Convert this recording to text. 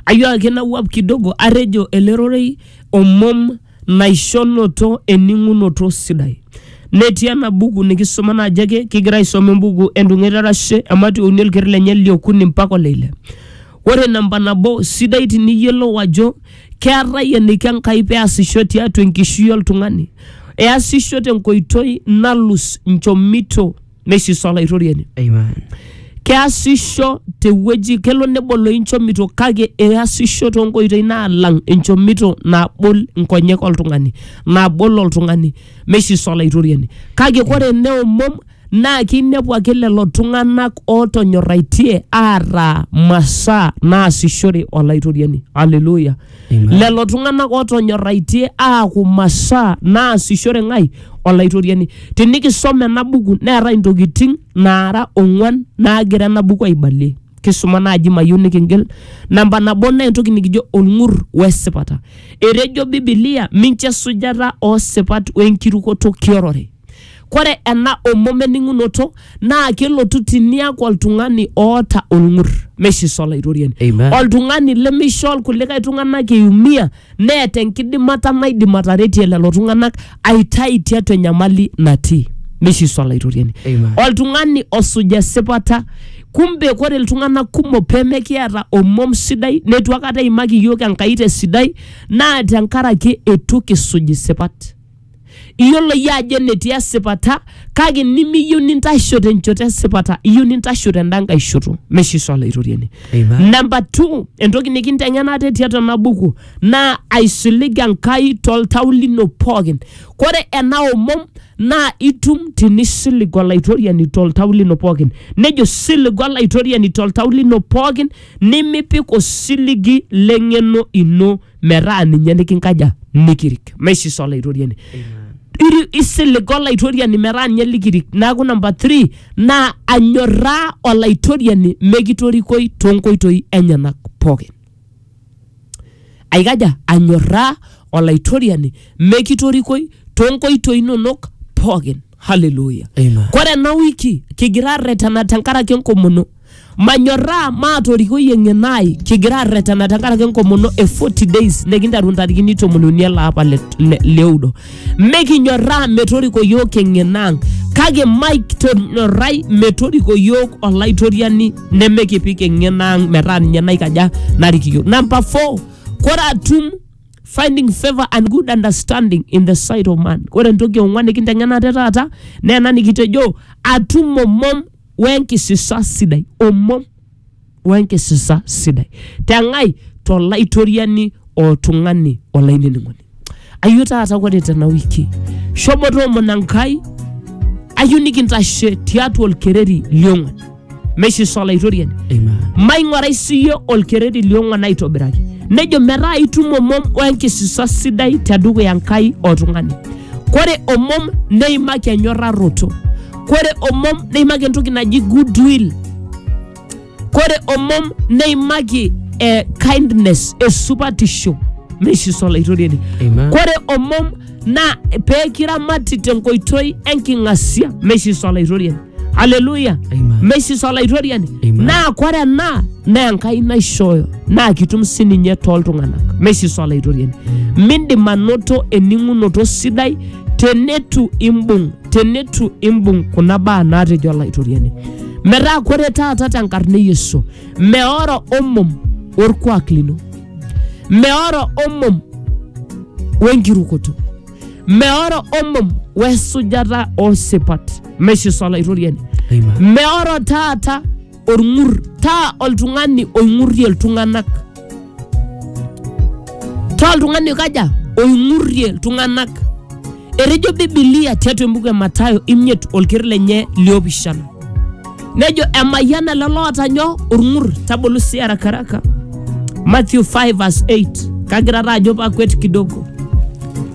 Ayo ake nawuap kidogo atejo ele rorei omom naishonoto ening'unoto sidai. Netii ena buku nikisoma naaji ake kigira aisoma embuku entung'et arashe emati ouni olker lenye liokuni mpaka oleile. Ore namba nabo sidai tiniyiolou ajo keetae eniko Enkai peasisho tiatua enkishui oltung'ani. Easisho tenkoitoi nalus nchomito neisisa olaitoriani Amen. keasisho tewueji kelo nebolo inchomito kake easisho toonkoitoi naalang enchomito nabol nkonyek oltung'ani nabol oltung'ani meisisa olaitoriani kake kore neomom naa kinepu ake lelo tung'anak ootonyorraitie aataa masaa naasishore olaitoriani aleluya Amen. lelo tung'anak ootonyorraitie aaku masaa naasishore ng'ai olaitoriani tinikisom ena buku neetae intokiting naara ong'uan naagira ena buku aibalie kisuma naaji mayieu nikingil namba nabo naa entoki nikijo olng'ur wesipata etejo bibilia mincho esujata oosipat wenkirukoto kiorore Kore ena omom ening'unoto naa kelotu tiniaku oltung'ani oota olng'ur meishiso olaitoriani. Amen. Oltung'ani lemeisho ilkulikae tung'anak eumia neeta enkidimata naidim ataretie lelo tung'anak aitai tiatua enyamali natii. Meishiso olaitoriani. Amen. Oltung'ani osuj esipata. Kumbe kore iltung'anak kumok pemekiata omom sidai neitu akata eimaki iyiook Enkai tesidai naa tenkaraki eitu kisuj isipat. Iyiolo iyie ajo enetii esipata kake nimiyieu nintasho tenchoto esipata, iyieu nintasho tenda nkae shoto. Meshe sa Olaitoriani. Amen. Namba two, entoki nikinteng'ena ate tiatua ena buku naa aisilig Enkai toltau lino pookin. Kore ena omom naa itum tinisilig Olaitoriani toltau lino pookin. Nejo siligu Olaitoriani toltau lino pookin nimipik osiligi l'eng'eno ino metaa ninye nikinkaja nikirik maisis olaitoriani Iri- isilig olaitoriani metaa ninye likirik neaku namba 3 naa anyorraa olaitoriani mekitorikoi toonkoitoi enyenak pookin aikaja anyorraa olaitoriani mekitorikoi toonkoitoi inonok pookin haleluya Amen. kore ena wiki kigira arretena tenkaraki enkomono manyorraa maatorikoi eng'eno ai kigira arretena tenkaraki enkomono e 40 days nikinteru ntarikini tomon uni ele apa le- le- leudo mikinyorraa metoriko yiok eng'eno ang kake maitonyorrai metoriko yiok olaitoriani nemekipik eng'eno ang metaa ninye naikaja narik yiok namba 4 kore atum finding favor and good understanding in the sight of man ore entoki ong'uan nikinteng'ena te taata naa ena nikitejo atum omom wenkisisa sidai omom wenkisisa sidai teng'ai tolaitoriani oltung'ani olainining'oni ayio taata ore tena wiki shomo toomon enkai ayieu nikintashe tiatua olkereri liong'uan meishisho olaitoriani Amen. maing'orai siyie olkereri liong'uan aitobiraki nejo metaa itum omom wenkisisa sidai tedukuya Enkai oltung'ani kore omom neimaki enyorraroto kore omom neimaki entoki naji goodwill kore omom neimaki eh, kindness esupatisho meishiso olaitoriani Amen. kore omom naa peekiramati tenkoitoi enking'asia meishiso olaitoriani haleluya Amen. mesis olaitoriani Amen. naa kore ena naa enkai naishooyo naa kitum sininye tooltung'anak mesis olaitoriani mindim anoto ening'unoto sidai tenetu imbung tenetu imbung kuna baa naatejo olaitoriani metaa kore taata tenkarna e yesu meoro omom orkuak lino meoro omom wenkirukoto meoro omom wesujata osipat meshiso olaitoriani Amen. meoro taata olng'ur taa oltung'ani oing'urrie iltung'anak taa oltung'ani oikaja oing'urrie iltung'anak etejo bibilia tiatua embuku e matayo imiet olkeri lenye liopishana nejo emayian ele loota nyoo olng'ur tabolu sii arakaraka matthew 5 verse 8 kagira taa ajo pakwet kidogo